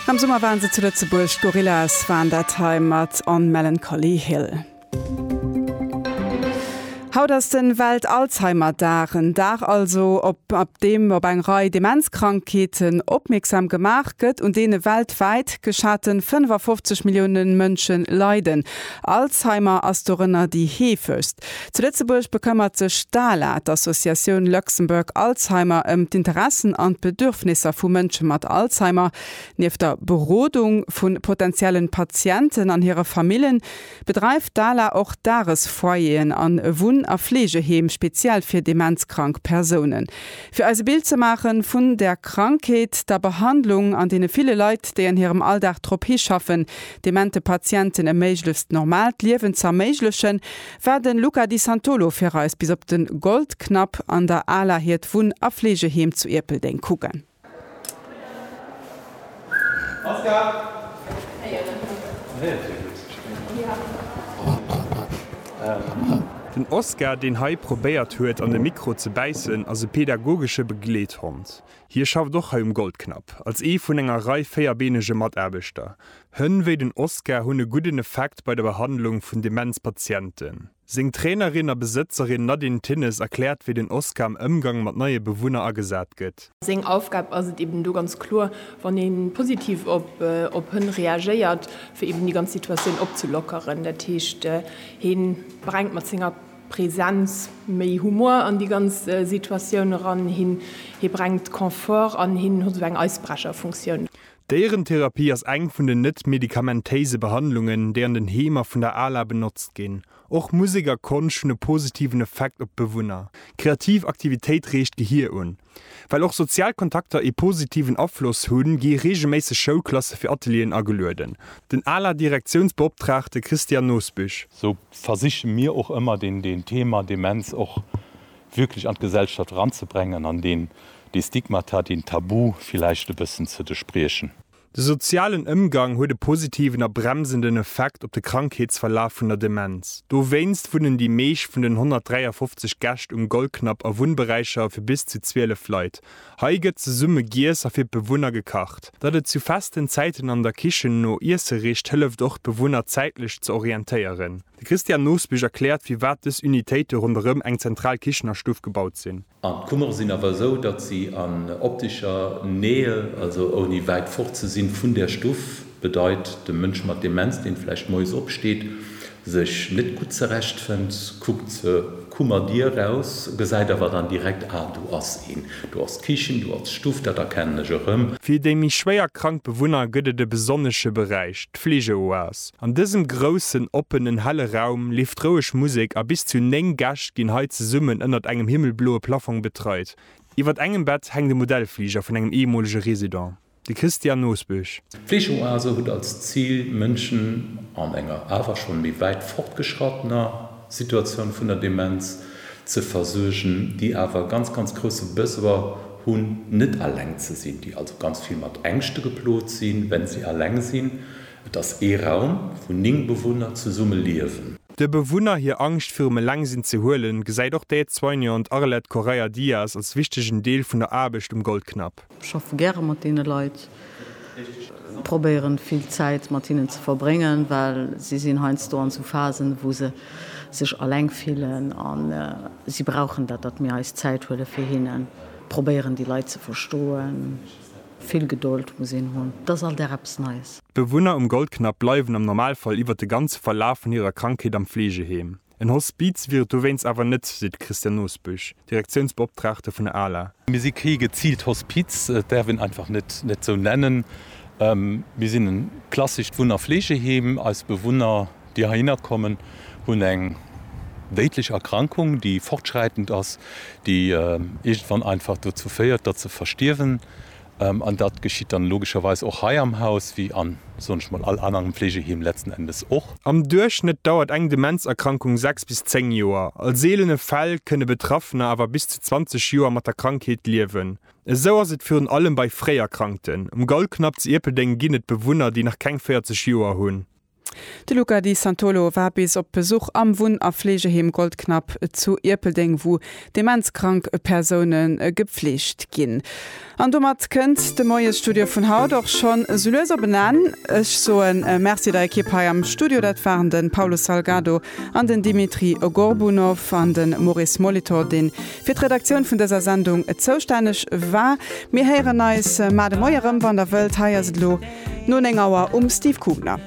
Am Summer waren se zu Lëtzebuerg, d'Gorillaz waren dat hei mat On Melancholy Hill. Haut ass de Welt-Alzheimer-Dag, en Dag also op op deem op eng Rei Demenzkrankheeten opmierksam gemaach gëtt, un deene weltwäit geschate 55 Millioune Mënsche leiden. Alzheimer ass dorënner déi heefegst. Zu Lëtzebuerg bekëmmert sech d'ALA, d'Associatioun Luxembourg Alzheimer, ëm d'Interessen an d'Bedürfnisser vu Mënsche mat Alzheimer. Nieft der Berodung vu potentiellen Patienten an hire Famillen, bedreift d'ALA och Dagesfoyeren an e Wunn a Fleegeheem speziell fir demenzkrank Persounen. Fir eis e Bild ze maache vun der Krankheet, der Behandlung an deene ville Leit, déi an hirem Alldag drop hischaffen, demente Patienten e méiglechst normaalt Liewen z'erméiglechen, war den Luca Di Santolo fir eis bis op den Goldknapp an der Ala hiert Wunn a Fleegeheem zu Ierpeldeng kucken. Den Oskar, deen hei probéiert huet an de Mikro ze bäissen, ass e pädagogesche Begleethond. Hie schafft och hei um Goldknapp, als ee vun enger Rei véierbeenege Mataarbechter, Hënn wéi den Oskar hunn e gudden Effekt bei der Behandlung vun Demenz-Patienten. Seng Trainerin a Besëtzerin Nadine Thinnes erkläert, wéi den Oskar am Ëmgang mat neie Bewunner agesat gëtt. Seng Aufgab ass et eben do ganz kloer, wann ee positiv op Hënn reagéiert, fir eben déi ganz Situatioun opzelockeren. Dat heescht, hie brengt mat senger Presenz méi Humor an déi ganz Situatioun eran, hie brengt Confort an hien huet esou eng Eisbrecherfunktioun. D'Déierentherapie ass eng vun den net medikamentéise Behandlungen, déi an den Heemer vun der ala benotzt ginn. Och Musek a Konscht hunn e positiven Effekt op d'Bewunner. Kreativ Aktivitéit reegt d'Gehier un. Well och sozial Kontakter ee positiven Afloss hunn, gi reegelméisseg Schoulklasse fir Atelieren agelueden. Den ala-Direktiounsbeoptraagte Christian Nosbüsch. Sou versiche mir och ëmmer den Thema Demenz och wierklech an d'Gesellschaft eranzebrengen an deen, dee Stigmata, deen Tabu villäicht e bëssen ze derspriechen. De sozialen Ëmgang huet e positiven a bremsenden Effekt op de Krankheetsverlaf vun der Demenz. Dowéinst wunnen déi meescht vun den 153 Gäscht um Goldknapp a Wunnberäicher fir bis zu 12 Leit. Hei gëtt zesumme giess a fir d'Bewunner gekacht. Datt et zu festen Zäiten an der Kichen no Iesse richt, hëlleft och d'Bewunner zäitlech ze orientéieren. De Christian Nosbich erkläert, firwat dës Unitéite ronderëm eng zentral Kichenerstuff gebaut sinn. An d'Kummere sinn awer esou, datt si an optischer Nähe, also ouni wäit fort ze sinn vun där Stuff, bedeit, de Mënsch mat Demenz, dee vläicht moies opsteet, sech net gutt zerechtfënnt, kuckt zur Kummerdier eraus, gesäit awer dann direkt, Ah, do ass een, do ass d'Kichen, do ass d'Stuff, dat erkennen ech erëm. Fir déi méi schwéier krank Bewunner gëtt et e besonnesche Beräich, d'Fleegeoas. An dësem groussen, oppenen, helle Raum leeft roueg Musek a bis zu 9 Gäscht ginn hei zesummen ënnert engem himmelbloe Plaffong betreit. Iwwert engem Bett hänkt e Modellfliger vun engem eemolege Resident, de Christian Nosbusch. D'Fleegeoase huet als Zil, Mënschen an enger awer schonn méi wäit fortgeschrattener Situatioun vun der Demenz ze versuergen, déi awer e ganz, ganz grousse Besoin hunn, net alleng ze sinn, déi also ganz vill mat Ängschte geplot sinn, wenn si alleng sinn. Et ass ee Raum, wou 9 Bewunner zesumme liewen. De Bewunner hir Angscht virum Elengsinn ze huelen, gesäit och d'Aide-soignante Arlette Correia Dias als wichtegen Deel vun der Aarbecht um Goldknapp. Ech schaffe gäre mat deene Leit, probéieren vill Zäit mat hinnen ze verbréngen, well si sinn heiansdo an esou Phasen, wou se sech eleng fillen a si brauchen dat, datt mir eis Zäit huele fir hinnen, probéieren déi Leit ze verstoen. Vill Gedold muss een hunn, et ass all Dag eppes Neies. D'Bewunner um Goldknapp bleiwen am Normalfall iwwer de ganze Verlaf vun hirer Krankheet am Fleegeheem. En Hospiz wier et dowéinst awer net, seet de Christian Nosbusch, Direktiounsbeoptraagte vun der ala. Mir si kee geziilt Hospiz, et däerf een einfach net net esou nennen. Mir sinn e klassescht Wunn a Fleegeheem. Eis Bewunner déi heihinner kommen, hunn eng déidlech Erkrankung, déi fortschräitend ass, déi iergendwann einfach dozou féiert, datt se verstierwen. An dat geschitt dann logescherweis och hei am Haus, wéi a, soen ech mol, all anerem Fleegeheem letzten Endes och. Am Duerchschnëtt dauert eng Demenzerkrankung sechs bis zéng Joer. A seelene Fäll kënne Betraffener awer bis zu 20 Joer mat der Krankheet liewen. Esou ass et virun allem bei Fréierkrankten. Um Gaulknapp zu Ierpeldeng ginn et Bewunner, déi nach keng 40 Joer hunn. De Luca Di Santolo war bis op Besuch am Wunn a Fleegeheem Goldknapp zu Ierpeldeng, wou demenzkrank Persoune gepfleegt ginn. An domat kënnt de Moiesstudio vun haut och schonn sou lues op en Enn. Ech soe Merci der Ekipp hei am Studio, dat waren de Paulo Salgado an den Dimitri Gorbunov an de Maurice Molitor, deen Fir d'Redaktioun vun dëser Sendung zoustänneg war. Mir héieren eis mar de Moie rëm, wann der wëllt. Hei ass et elo no 9 Auer um Steve Kugner.